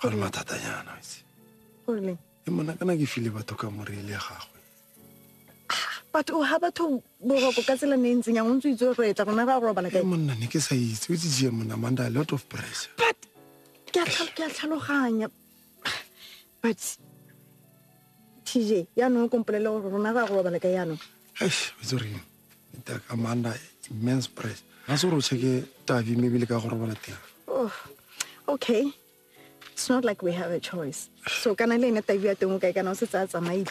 Ga re mathata yana, itse. Goreng? E mona kana ke file batho ka moreile ya gagwe. Batho o ha batho boroko ka tsela ne e ntseng yang o ntse o itse gore re tla rona ra robala E kae. monna ne ke sa itse, o itse jee monna, I'm under a lot of pressure. But ke a tlhal- ke a tlhaloganya. But TJ, yaanong o kompolele gore rona ra robala kae yaanong. Eish, o itse gore eng? Mr. Commander, immense press. Ga se gore o cheke tavi mme ebile ka go robala teng. Oh, okay. It's not like we have a choice. So kana le ene tavi ya teng o kae kana o se tsaya tsamaile.